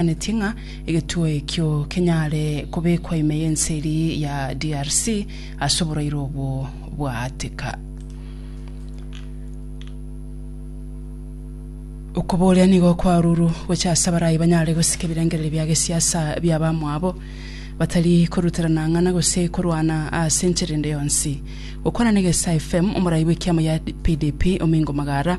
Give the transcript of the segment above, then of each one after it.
Anetie ng'a egetuo ekio kenyare kobekwa ime y'ense eria ya DRC ase oborairo obwo bwaatika. Okoboria nigo kwarurwu gocha ase abarai banyare gosika ebirengererio bia gesiasa bia abamwabo batari koruterana ng'ana gose korwana ase enchera ende yonsi. Gokwana na Egesa FM, omorai bw'ekiamo ya PDP Omingo Magara,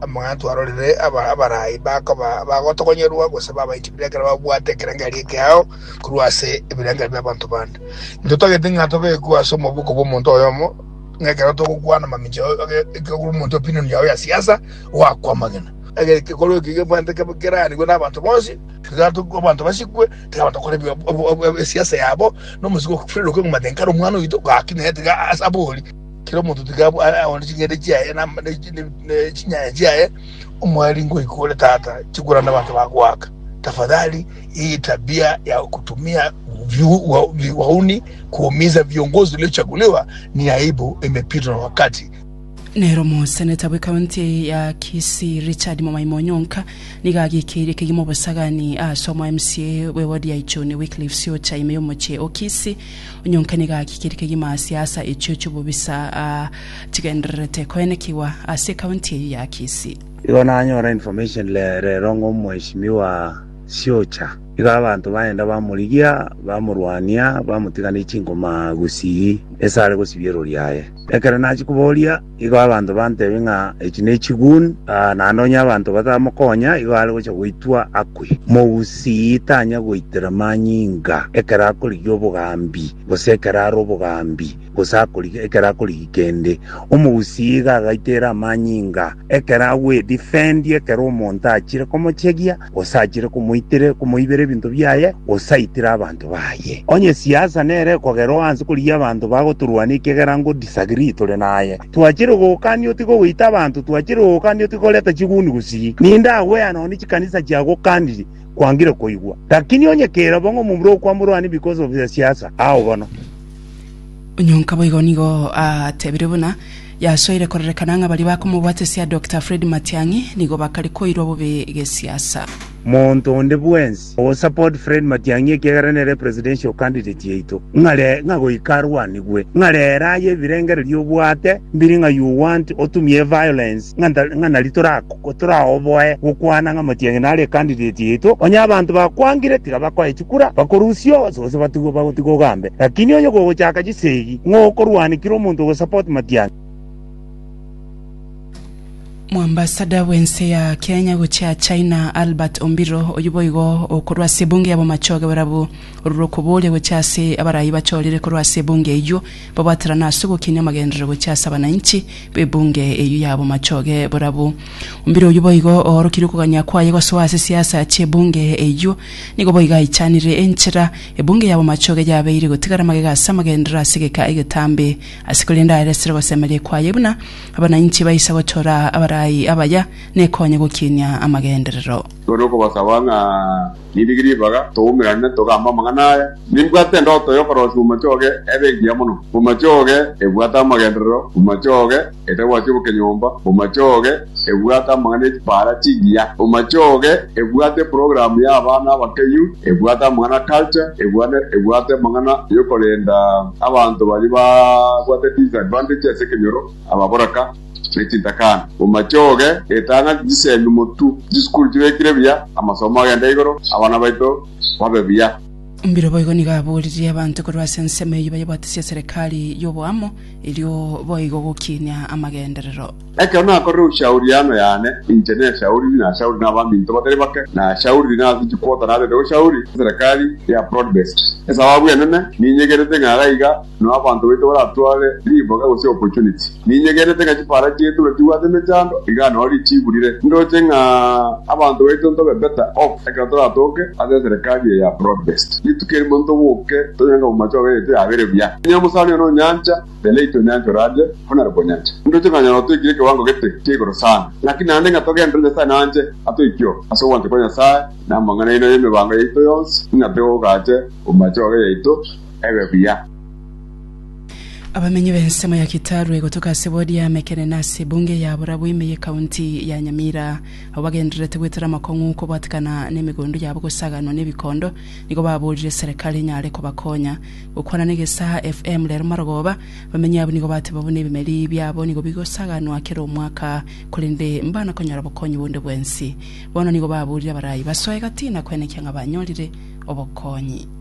Amang'anto arorire aba abarai bakoba bagotogonyorwa gose babaiti bire ekero babwate ekerengerio ekeao korwa ase ebirengerio bi'abanto bande. Intwe togete ng'a tobekwe ase omoboko bw'omonto oyomo ng'a ekero togokwana mamincha o- oge- ekero omonto opinion yao ya siasa oakwa amagena. Ege- Ekekorwa eke gebwate kebe keranigwe n'abanto bonsi, tiga to- abanto basikwe, tiga abanto bakore ebi- ob- ob- esiasa yabo, na omosike o Fredrick Omomatenkara omwana oito, gaki naye tiga as- abori. Kera omonto tiga aone ching'ende chiaye na na- na- na chinyanya chiaye, omwari ngoika ore tata chikura na abanto bagoaka. Tafadhali hii tabia ya kutumia vyu- wa- vi- wauni kuumiza viongozi waliochaguliwa ni aibu, imepitwa na wakati. Nero omoseneta bwe county ya Kisii Richard Momaimo Onyonka nigo agikeirie kegima obosagani ase omo MCA bwe ward ya Ichuni Wycliffe Siocha ime y'omochie o Kisii Onyonka nigo agikire kegima ase asa echio chi'obobisa chigendererete koenekigwa ase ekaunti eyio ya Kisii. Igo nanyora information rero ng'a omweshimiwa Siocha iga abanto baenda bamorigia, bamorwania, bamotiga ne chinkoma gusii ase are gosibia erori yaye. Ekero nachia koboria. Igo abanto bantebie ng'a echi nechiguni, naende onye abanto batamokonya igo are gocha goitwa akwe. Mogusii tanya goitera manyinga ekero akorigia obogambi, gose ekero are obogambi, gose akoriga ekero akorigia kende. Omogusii iga agaitera amanyinga ekero agwedifendia ekero omonto achire komochegia. gose achire komoitire komoibera ebinto biaye, gose aitire abanto baye. Onye siasa nere kogerwa onsi korigia abanto bagotorwania ekiagera ngo disagree tore naye. Twachire gokania otiga goita abanto, twachire gokania otiga koreta chiguni gusii. Ninde agwea nonye chikanisa chiagokanirie kwangire koigwa. Lakini onye kera bong'o momura okwamorwania because of a siasa, ao bono. Onyonka boigo nigo atebire buna. Yasoire kororekana ng'a baria bakomobwatesia Doctor Fred Matiang'i nigo bakare koirwa bobe gesiasa. Monto onde bwensi ogo support Fred Matiang'i ekiagera nere presidential candidate yaito ng'a re ng'a goika arwanigwe ng'a rere aye ebirengererio obwate mbiri ng'a you want otumie violence ng'a nta ng'a nari toraku Kotoraoboe gokwana ng'a motienyi nare candidate yaito, onye abanto bakwangire tiga bakoe chikura, bakorusia onsi gose batigwe bagotiga ogambe. Lakini onye kogochaka chisegi, ng'o okorwanikire omonto ogosupport Matiang'i? Moambasada bw'ense ya Kenya gochia China, Albert Ombiro, oyio boigo okorwa ase ebunge ya Bomachoge barabwo, ororo okoboria gochia ase abarai bachorire korwa ase ebunge eyio. Babwaterana ase ogokina amagenderero gochia ase abananchi b'ebunge eyio ya bomachoge borabu. Ombiri oyio boigo oorokirie okogania kwaye gosoa ase siasa chi'ebunge eyio. Nigo boigo aichanire enchera ebunge ya bomachoge yabeire gotigara magega ase amagenderero ase egeka egetambe ase korende aeresere gosemeria kwaye buna abananchi baisa gochora abarai abaya nekonye gokinia amagenderero. Korende okobasaba ng'a nindige ribaga, toumerane, togambe amang'ana aya, nimbwate endoto y'okorosia omochie oge ebe engiya mono, omochie oge ebwate amagenderero, omochie oge etagwasia obokenyomba, omochie oge ebwate amang'ana e chipaara chingiya, omochie oge ebwate eprogramu y'abana abake yu, ebwate amang'ana a culture, ebwane ebwate amang'ana y'okorenda abanto baria babwate disadvantage ase ekenyoro, ababoraka. ne chintakana, bomachoge, etang'ani, chisemi, motu, chisukuru chibekire buya, amasomo agende igoro, abana baito babe buya. Mbiro boigo nigo aboririe abanto korwa ase ensemo eyio bayebwatise eserekari y'oboamo, erio boigo gokinia amagenderero. Ekero nakorire ushauriano yane, inche neshauriri, nashauriri nabaminto batari bake, nashauriri nase chikwoto narete goshauri eserekari ya Prodbest. Esababu enene ninyegerete ng'a gaiga na abanto baito baratware riboga gose opportunity. Ninyegenete ng'a chipara chiaito natibwate emechando, iga nao richiburire. Ndoche ng'a abanto baito ntobe better off ekero toratoke ase eserekari eye ya broad based. Rituko erimo ntoboke tonyore ng'a omomache obo yaito yabere buya. Onye omosani one onyancha, the late Onyancha Oradia, bono are Bonyancha. Ndoche ng'a nyasae otoikire ekewango gete kia igoro sana. Naki naende ng'a togenderere Nyasae nanche atoikio ase ogwancha kwa Nyasae na amang'ana aino y'emebango yaito yonsi, ng'a tegogache omomache obe yaito, ebe buya. Abamenyi b'ensemo ya Kitarwe gotoka ase ward ya Mekere na ase ebunge ya Burabwime ye county ya Nyamira abwo bagendererete gwetera amakong'u kobwatekana n'emegondo yabo gosaganwa n'ebikondo nigo baborire serekari enyare kobakonya. Gokwana n'egesaha FM rero marogoba, abamenyi abwo nigo bateba buna ebimeri biabo nigo bigosaganwa kera omwaka korende mbanakonyora bokonyi bonde bwensi. Bono nigo baborire abarayi basoe gati na kwenekia ng'a banyorire obokonyi.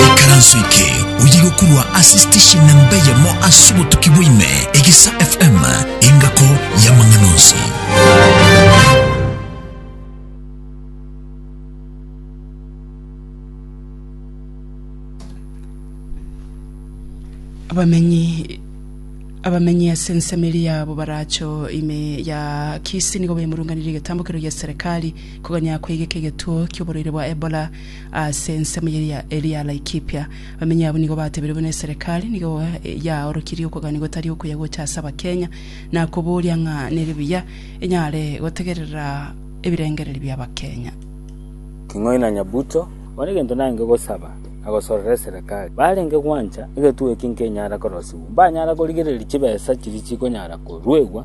Ikaranso eke oye gokurwa ase station namba eyemo ase obotuki bwaime egesa FM engako y'amang'ana onsi. abamenyi abamenyi ase ensemeri yabo baracho ime ya kisi nigo bemurunganire egetambokero gia serikali Konya kwegeka egetuo ki'oborwaire bwa Ebola ase ensemo eria eria Laikipia. Abamenyi abwo nigo batebirie buna eserekari nigo yaorokirie okogania gotari okuya gocha ase Abakenya na koboria ng'a nere buya enyare gotegerera ebirengererio bia Abakenya. King'oi na Nyabuto. Bono egento naenge gosaba na gosorera eserekari barenge gwancha egetuo eki nkenyara korosibwa, mbanyara korigereria chibesa chiria chikonyara koruegwa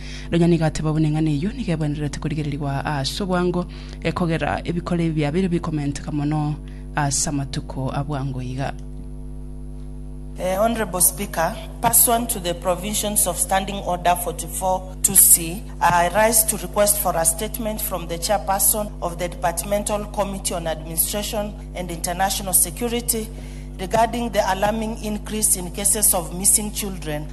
Nonya nigo ateba buna eng'ana eyio nigo ebwenerete korigererigwa ase obwango, ekogera ebikoro ebi biabeire bikomenteka mono ase amatuko a bwango iga. Honourable Speaker, pursuant to the provisions of Standing Order 44 to C, I rise to request for a statement from the Chairperson of the Departmental Committee on Administration and International Security regarding the alarming increase in cases of missing children